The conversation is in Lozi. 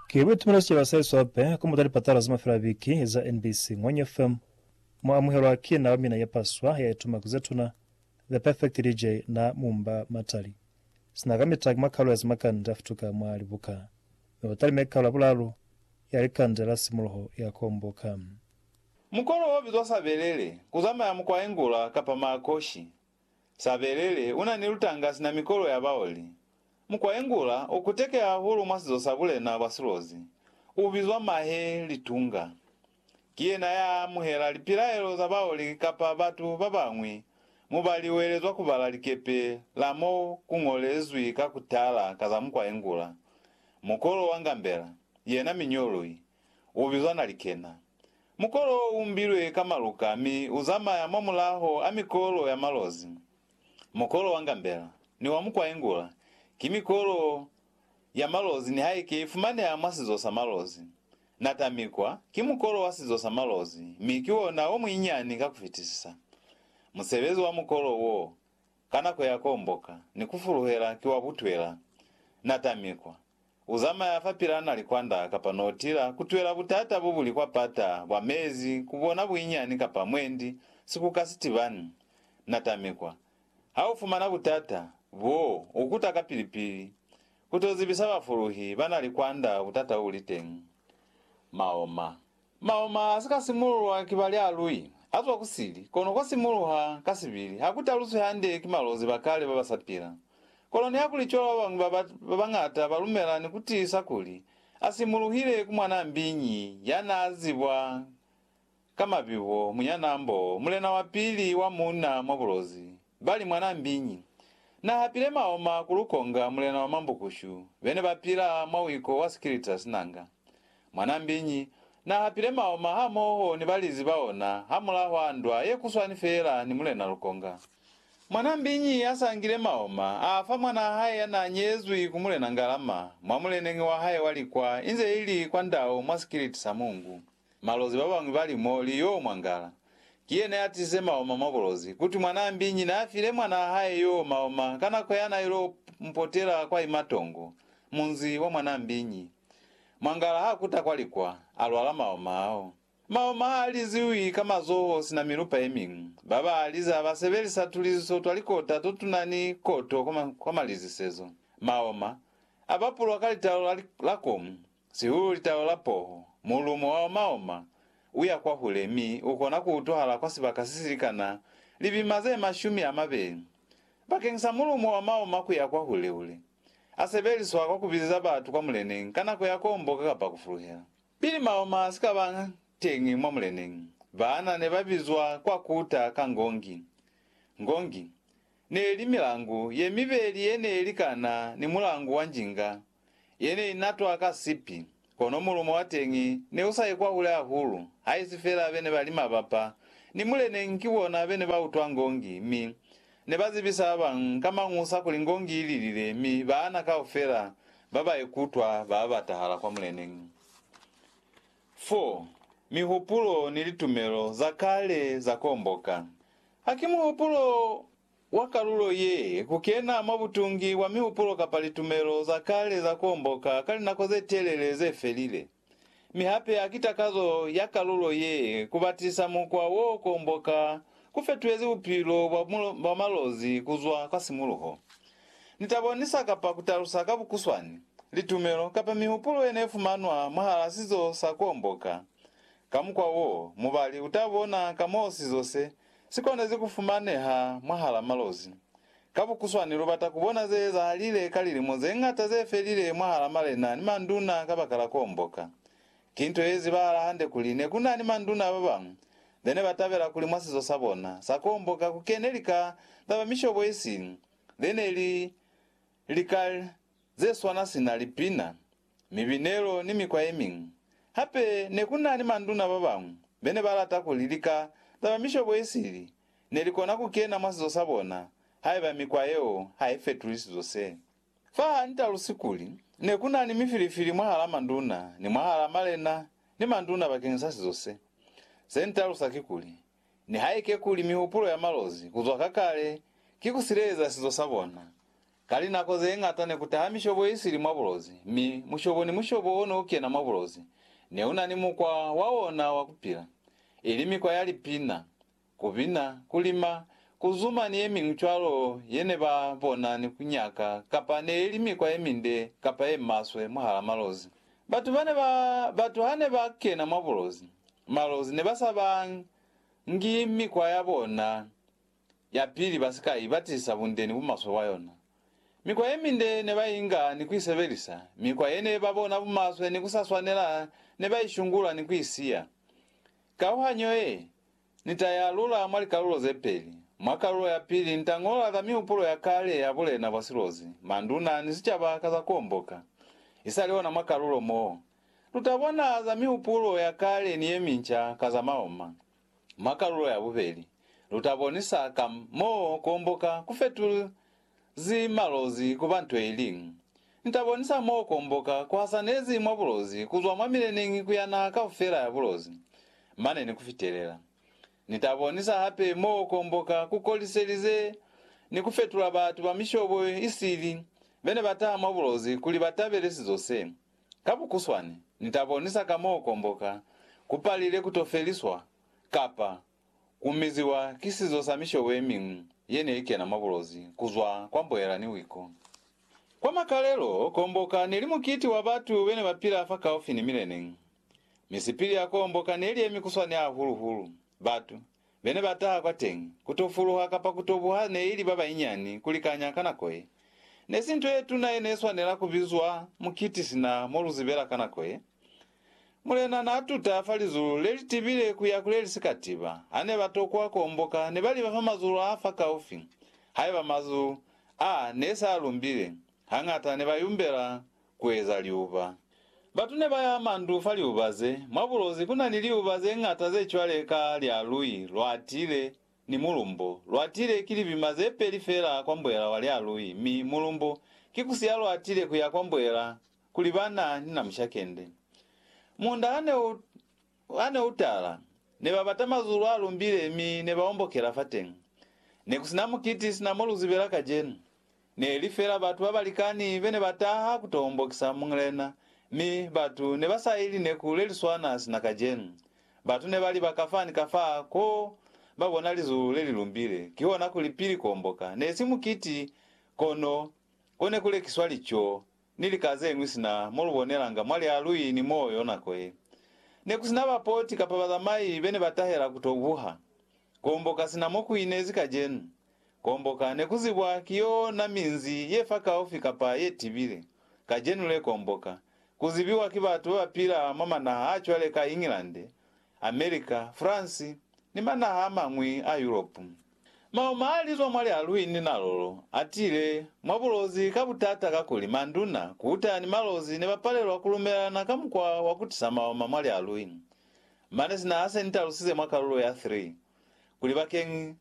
Ki Ruth Mulasyelwa Saiso Hape ku Muta Lipatala za Mafelabiki za NBC Ngwenya FM Mu Amuhelwa Ki Na Wa Mina Yapaswa Ya Ituma ku Zetuna The Perfect DJ Na Mumba Matali Sina Kamita Ki Makalo Ya Zimakande A Futuka Mwa Libuka Mi Wa Talime Kalo Ya Bulalu Ya Likande La Simuluho Ya Komboka. Mukolo wo bizwa sabelele, ku zamaya mukwa engula kapa maakoshi, Sabelele una ni lutanga sina mikolo ya baoli. Mukwaengula u kuteke hahulu mwa sizo sa bulena bwa silozi, u bizwa mahe litunga. Ki yena ya amuhela lipilaelo za baoli kapa batu ba bañwi mo ba liwelezwa ku bala likepe la mo ku ñolezwi ka ku tala ka za mukwaengula. Mukolo wa ngambela, yena miñolwi, U bizwa Nalikena. Mukolo wo u mbilwe ka maluka mi u zamaya mwa mulaho a mikolo ya malozi. Mukolo wa ngambela ni wa mukwaengula ki mikolo ya malozi nihaike i fumaneha mwa sizo sa malozi. Natamikwa ki mukolo wa sizo sa malozi mi ki ona o muinyani ka ku fitisisa. Musebezi wa mukolo wo ka nako ya komboka ni ku fuluhela ki wa butwela. Natamikwa. U zamaya fa pila na likwanda kapa notila, ku twela butata bo buli kwa pata bwa mezi, ku bona buinyani kapa mwendi, sikuka sitibani, na tamikwa. Ha u fumana butata boo, u kuta kapili-pili, ku to zibisa bafuluhi ba na likwanda butata u li teñi. Maoma. Maoma a si ka simululwa ki ba lialui, a zwa ku sili, kono kwa simuluha ka sibili, ha ku taluswi hande ki malozi ba kale ba ba sa pila. Kono nihakuli cwalo ba bañwi ba ba bañata ba lumela ni ku tiisa kuli a simuluhile ku mwanaa mbiñi ya naa zibwa ka mabibo, Munyanaambo, mulena wa pili wa muuna mwa bulozi, Bali, Mwanaa mbiñi na hapile maoma ku lukonga mulena wa mambukushu bene ba pila mwa wiko wa sikilita sinanga. Mwanaa mbiñi na hapile maoma hamoho ni balizi ba ona hamulaho a ndwa ye kuswani feela ni mulena lukonga. Mwanaa mbiñi a sangile maoma a fa mwanaa hae ya naa nyezwi ku mulena ngalama mwa muleneñi wa hae wa likwa inze ili kwa ndau mwa sikiliti sa mungu. Malozi ba bañwi ba li, Mo li y'o mwangala. Ki yena ya tize maoma mwa bulozi. Ku twi mwanaa mbinyi n'a file mwanaa hae y'o maoma ka nako ya n'a il'o mu potela kwa ima tongo, munzi wa mwanaa mbinyi. Mwangala h'a kuta kwa likwa, a lwala maoma ao. Maoma h'a liziwi ka mazoho sina milupa ye miñwi. Ba ba a liza ba sebelisa tuliziso twa likota to tuna ni koto kwa malizisezo. Maoma a bapulwa ka litalo la komu. Sihulu litalo la poho, mulumo wa omaoma u ya kwahule mi u kona ku utwahala kwa sibaka se si likana lipima ze mashumi a mabeli. Bakeng sa mulumo wa omaoma ku ya kwahule-hule, a sebeliswa kwa ku bizeza batu kwa muleneñi ka nako ya komboka kapa ku fuluhela. Pili maoma a si ka ba teñi mwa muleneñi, baana ne ba bizwa kwa ku ta ka ngongi. Ngongi ne li milangu ye mibeli ye ne likana ni mulangu wa njinga Ye ne i natwa ka sipi, kono mulumo wa teñi ne u sa ye kwahule hahulu, haisi fela be ne ba li mabapa ni muleneñi ki bona be ne ba utwa ngongi mi ne ba zibisa ba bañwi ka mañusa kuli ngongi i lilile mi baana kaufela ba ba ye kutwa ba batahala kwa muleneñi. 4, Mihupulo ni litumelo za kale za komboka. Ha ki muhupulo wa kalulo ye, ku kena mwa butungi bwa mihupulo kapa litumelo za kale za kuomboka ka linako ze telele ze felile. Mi hape haki takazo ya kalulo ye ku batisa mukwa wo kuomboka ku fetuhezi bupilo bwa bwa malozi ku zwa kwa simuluho. Ni ta bonisa kapa ku talusa ka bukuswani, litumelo kapa mihupulo ye ne fumanwa mwahala sizo sa kuomboka. Ka mukwa wo, mubali u ta bona ka moo sizo se Si konezi ku fumaneha mwahal'a malozi. Ka bukuswani, lu bata ku bona ze ezahalile ka lilimo ze ñata ze felile mwahal'a malena ni manduna kabakala k'o omboka. Ki nto ye zibahala hande kuli ne ku na ni manduna ba bañwi be ne ba tabela kuli mwa sizo sa bona sa ku omboka ku kene lika za ba mishobo isi ze ne li lika ze swana sina lipina, mibinelo ni mikwa ye miñwi. Hape ne ku na ni manduna ba bañwi be ne ba lata kuli lika za ba mishobo ye sili ne li kona ku kena mwa sizo sa bona haiba mikwa yeo ha i fetuli sizo se. Fa ha ni talusi kuli ne ku na ni mifilifili mwahal'a manduna ni mwahal'a malena ni manduna bakeñisa sizo se, se ni talusa kikuli, Nihaike kuli mihupulo ya malozi ku zwa ka kale ki ku sileleza sizo sa bona, ka linako ze ñata ne ku taha mishobo ye sili mwa bulozi, mi mushobo ni mushobo o ne u kena mwa bulozi ne u na ni mukwa wa ona wa ku pila, ili mikwa ya lipina, ku bina, ku lima, ku zuma ni ye miñwi cwalo ye ne ba bona ni ku nyaka kapa ne i li mikwa ye minde kapa ye maswe mwahal'a malozi. Batu bane ba batu hane ba kena mwa bulozi, malozi ne ba sa ba ngi mikwa ya bona ya pili ba si ka i batisa bunde ni bumaswe bwa yona. Mikwa ye minde ne ba inga ni ku i sebelisa, mikwa ye ne ba bona bumaswe ni ku sa swanela ne ba i shungula ni ku i siya. Kauhanyo ye Ni ta i alula mwa likalulo ze peli. Mwa kalulo ya pili, ni ta ñola ka mihupulo ya kale ya bulena bwa silozi, manduna, ni sicaba ka za ku omboka. I sa li ona mwa kalulo mo, lu ta bona za mihupulo ya kale ni ye minca ka za maoma. Mwa kalulo ya bubeli, lu ta bonisa ka mo ku omboka ku fetulw Zi malozi ku ba nto ili. Ni ta bonisa mo komboka ku hasanezi mwa bulozi kuzwa mwa mileneñi ku ya naha kaufela ya bulozi, mane ni ku fitelela. Ni ta bonisa hape mo komboka ku koliselize ni ku fetula batu ba mishobo isili be ne ba taha mwa bulozi kuli ba tabele sizo se. Ka bukuswani, ni ta bonisa ka mo komboka ku palile ku to feliswa, kapa Ku miziwa ki sizo sa mishobo ye miñwi ye ne i kena mwa bulozi ku zwa kwa mboela ni wiku. Kwa makalelo, Komboka! ne li mukiti wa batu be ne ba pila fakaufi ni milene. Mi sipili ya Komboka! ne li ye mikuswani hahulu-hulu. Batu be ne ba taha kwateñi, ku to fuluha kapa ku to buha ne i li ba banyinyani ku likanya ka nako ye. Ne si nto ye tuna ye ne swanela ku bizwa mukiti sina mo lu zibela ka nako ye. Mulena n'a tuta fa lizulu le li tibile ku ya ku le li si ka tiba. Ha ne ba tokwa ku omboka, ne ba liba fa mazulu a fakaufi. Haiba mazulu a ne s'a lumbile, hañata ne ba yumbela ku eza liuba. Batu ne ba yaha mandu fa liuba ze. Mwa bulozi ku na ni liuba ze ñata ze cwale ka lya lui lwa tiile ni mulumbo. Lwa tiile ki libima ze peli fela kwa mbwela wa lya lui, mi mulumbo ki ku siya lwa tiile ku ya kwa mbwela kuli ba na ni namusha kende. Munda ha ne u, ha ne u tala, ne ba bata mazulu a lumbile mi ne ba ombokela fateñi. Ne ku si na mukiti sina mo lu zibela kajenu. Ne li fela batu ba balikani be ne ba taha ku to ombokisa Mulena, mi batu ne ba sa ili neku le li swana sina kajenu. Batu ne ba li ba ka fa ni ka fa ko ba bona lizulu le li lumbile, kihona kuli pili ku omboka. Ne si mukiti, kono ko ne ku lekiswa lico ni lika zeñwi sina mo lu bonelanga mwa lialui ni moo yo nako ye ne ku sina bapoti kapa bazamai be ne ba tahela ku to buha. Kuomboka sina mo ku inezi kacenu, kuomboka ne ku zibwa ki yo na minzi ye fakaufi kapa ye tibile. Kacenu le kuomboka ku zibiwa ki batu ba ba pila mwa manaha a cwale ka England, America, France, ni manaha a mañwi a Yuropu. Mauma a li zwa mwa lialwini na lolo a tile mwa bulozi ka butata kakuli manduna, kuta ni malozi ne ba palelwa ku lumelana ka mukwa wa ku tisa mauma mwa lialwini. Mane sina ha se ni talusize mwa kalulo ya 3, kuli bakeñi